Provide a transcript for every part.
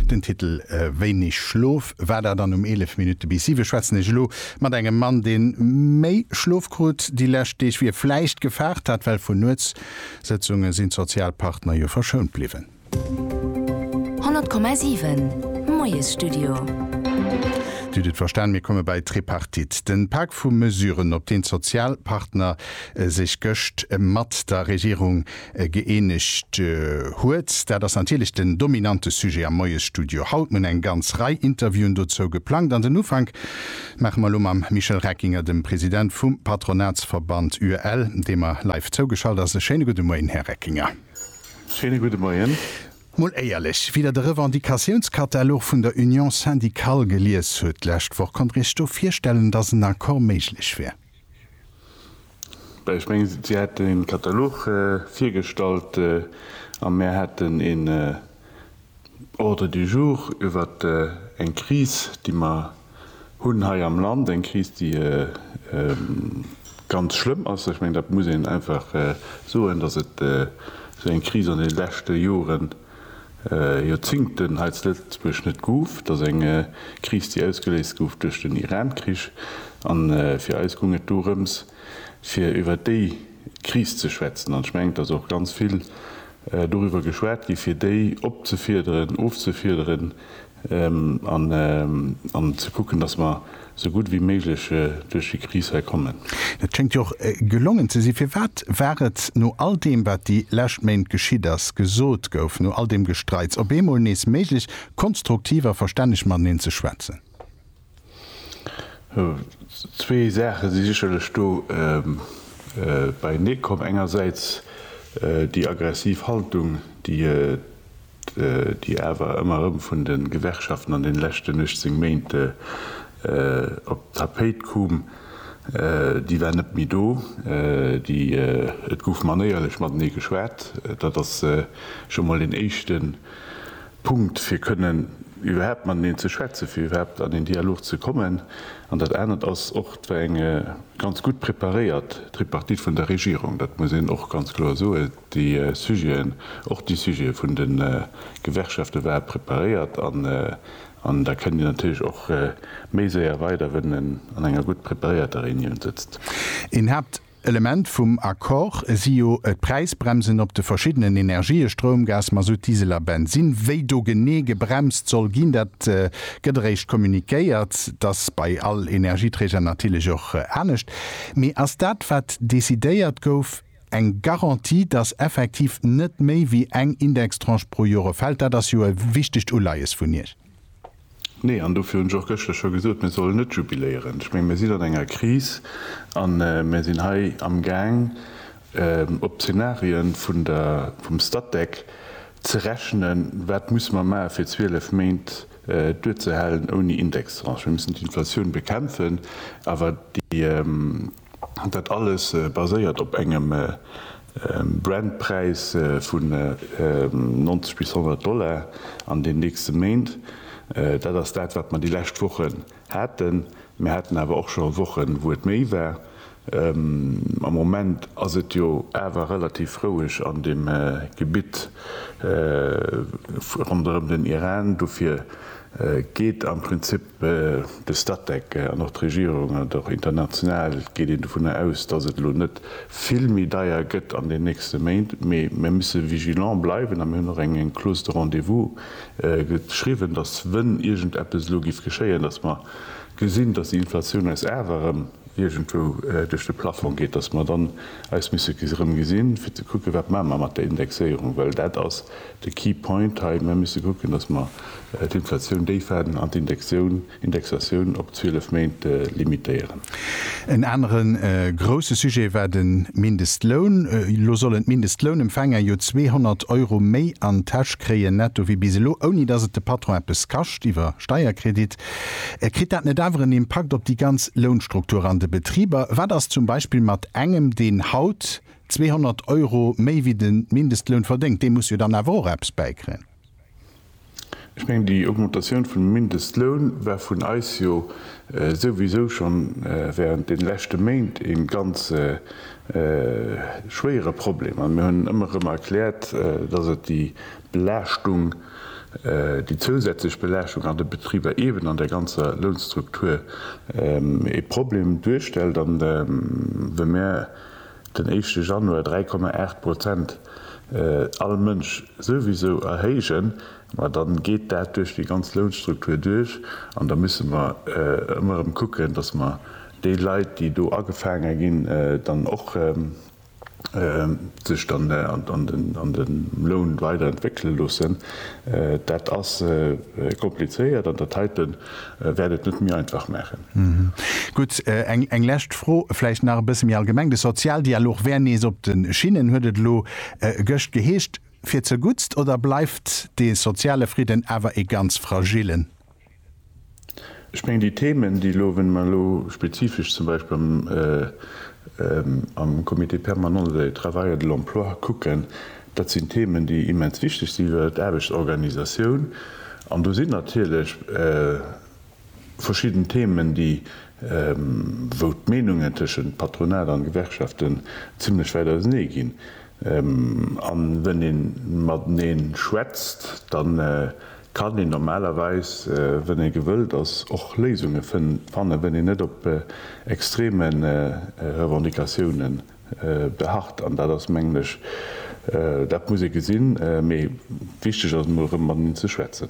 Den Titel Wéineg Schlof war dat an um 11 Minutte bis 7 schwätzen ech elo mat engem Mann, dee méi Schlof krut déi lescht Deeg, wéi e vläicht gefaart hat, well vun Nuetssëtzunge sinn d'Sozialpartner jo verschount bliwwen. 100,7 Moiesstudio. Dir hutt et verstan, mir komme bei d'Tripartite, den Pak vu Mesuren, op deen d'Sozialpartner sech gëscht mat der Regierung gëeenegt huet. Dat ass natierlech den dominante Sujet am Moiesstudio haut. Mir hunn eng ganz Rei Interviewen dozou geplangt an den Ufank maache mer elo mam Michel Reckinger, dem President vum Patronatsverband UEL, dee mer live zougeschalt ass. E schéine gudde Moien, Här Reckinger. Schéine gudde Moien. Mol éierlech, wéi Der de Revendicatiounskatalog vun der Union syndicale gelies hutt d'lescht Woch, konnt Der Iech do virstellen, datt en Accord méiglech wär? Ech mengen, si hätt e Katalog virgestallt a mär hätten een Ordre du jour iwwer eng Kris, déi mer hunn hei am Land, eng Kris, déi ganz schlëmm ass. Ech mengen, dat muss een einfach soen, datt et esou eng Kris an deene leschte Joren, Joerzingten hei zu Lëtzebuerg net gouf. Et ass eng Kris, déi ausgeléist gouf duerch den Iran-Krich. A fir eis goung et dorëms, fir iwwer déi Kris ze schwätzen. An ech mengen, et ass och ganz vill doriwwer geschwat gi fir déi opzefiederen, ofzefiederen, an ze kucken, dass mer esou gutt wéi méiglech duerch déi Kris hei kommen. Dat schéngt jo och gelongen ze sinn. Firwat war et no all deem, wat déi lescht Méint geschitt ass, gesot gouf, no all deem Gestreits, op eemol nees méiglech, konstruktiv a verstänneg mateneen ze schwätzen? Zwee Saache si sécherlech do beienee komm. Engersäits déi aggressiv Haltung, déi awer ëmmer erëm vun de Gewerkschaften an deene leschten 18 Méint op d'Tapéit koom, déi war net méi do. Et gouf manéierlech matenee geschwat. Dat ass scho mol deen éischte. Punkt, fir kënnen iwwerhaapt mateneen ze schwätzen, fir iwwerhaapt an een Dialog ze kommen. An dat anert ass och, et war eng ganz gutt preparéiert Tripartite vun der Regierung, dat muss een och ganz kloer soen. Déi Sujeten, och déi Sujete vun de Gewerkschafte ware preparéiert an da kënnt een natierlech och méi séier weider, wann een an enger gutt preparéierter Reunioun sëtzt. Een Haaptpunkt, Element vum Accord si jo d'Präisbremsen op de verschiddenen Energië, Stroum, Gas, Masutt, Diesel a Bensinn. Wéi do genee gebremst soll ginn, dat gëtt eréischt kommuniquéiert. Et ass bei all Energieträger natierlech och anescht. Mee ass dat, wat decidéiert gouf, eng Garantie, datt effektiv net méi wéi eng Indextranche pro Jore fält? Dat ass jo e wichtegt Uleies vun Iech. Nee, an dofir hunn ech och gëschter scho gesot, mir sollen net jubiléieren. Ech menge mir sinn an enger Kris a mir sinn hei amgaang op Zeenarië vum Statec ze rechnen, wat musse mer maachen, fir 12 Méint duerzehalen ouni Indextranche. Mir mussen d'Inflatioun bekämpfen, awer déi. Dat alles baséiert op engem Brentpräis vun 90 bis 100 Dollar an den nächste Méint. Dat ass dat, wat mer déi lescht Wochen haten. Mir haten awer och scho Wochen, wou et méi war. Am Moment ass et jo awer relativ roueg an deem Gebitt ronderëm den Iran. Dofir geet am Prinzip De Statec an och d'Regierung an och international geet een dovun aus, dass et elo net vill méi deier gëtt an den nächste Méint. Mee mir musse vigilant bleiwen a mir hunn och eng Clause de rendez-vous geschriwwen, dass, wenn iergend eppes elo géif geschéien, dass mer gesinn, dass déi Inflatioun eis awer erëm iergendwou duerch de Plafong geet, dass mer dann eis musse erëm gesinn, fir ze kucken, wat maache mer mat der Indexéierung, well dat ass, De key point hei, Mer misse kucken, datt mer d'Inflatioun déif halen an d'Indexatioun op 12 Méint limitéieren. En anere grousse Sujet war de Mindestloun. Elo sollen d'Mindestlounempfänger jo 200 Euro méi an d'Täsch kréien netto wéi bis elo, ouni datt et de Patron eppes kascht iwwer Steierkredit. Kritt dat net awer en Impakt op déi ganz Lounstruktur an de Betriber? Wat ass zum Beispill mat engem, deen haut 200 Euro méi wéi de Mindestloun verdéngt, dee muss jo dann awer och eppes bäikréien. Ech mengen, déi Augmentatioun vum Mindestloun war vun eis jo souwisou scho während deene leschte Méint e ganz schwéiere Problem a mir hunn ëmmer erëm erkläert, dass et déi Belaaschtung, déi zousätzlech Belaaschtung an de Betriber eeben an där ganzer Lounstruktur e Problem duerstellt. An wa mir den éischte Januar 3,8 Prozent all Mënsch souwisou erhéijen, ma dann geet dat duerch déi ganz Lounstruktur duerch an da musse mer ëmmer erëm kucken, dass mer déi Leit, déi do agefaange ginn, dann och sech dann an de Loun weiderentwéckele loossen. Dat ass komplizéiert an dat heiten. wäert et net méi einfach maachen. Gutt, eng lescht Fro vläicht nach e bësse méi allgemeng. De Sozialdialog wär nees op de Schinnen, huet et elo gëscht geheescht. Fir zerguttst oder bleift de soziale Fridden awer ee ganz fragillen? Ech mengen, déi Themen, déi elo, wann mer elo spezifesch zum Beispill am Comité permanent de travail et de l'emploi kucken, Dat sinn Themen, déi immens wichteg si fir d'Aarbechtsorganisatioun. An do sinn natierlech verschidden Themen, déi, wou d'Meenungen tëschent Patronat an Gewerkschaften zimlech wäit ausenee ginn. An wenn ee matenee schwätzt, da kann een normalerweis, wenn ee gewëllt ass, och Léisunge fannen, wenn een net op extremen Revendicatiounen beharrt, an dat ass, mengen ech, dat muss ee gesinn, mee wichteg ass et emol erëm mat eneen ze schwätzen.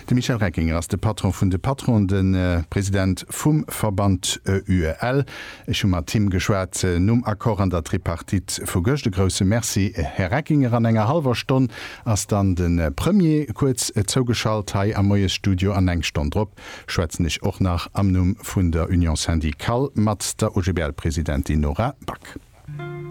De Michel Reckinger ass de Patron vun de Patronen, de President vum Verband UEL. Ech hu mat him geschwat nom Accord an der Tripartite vu gëscht. E grousse Merci, Här Reckinger. An enger hallwer Stonn ass dann de Premier kuerz zougeschalt hei am Moiesstudio an eng Stonn drop schwätzen ech och nach am Numm vun der Union Syndicale mat der OGBL-Presidentin Nora Back.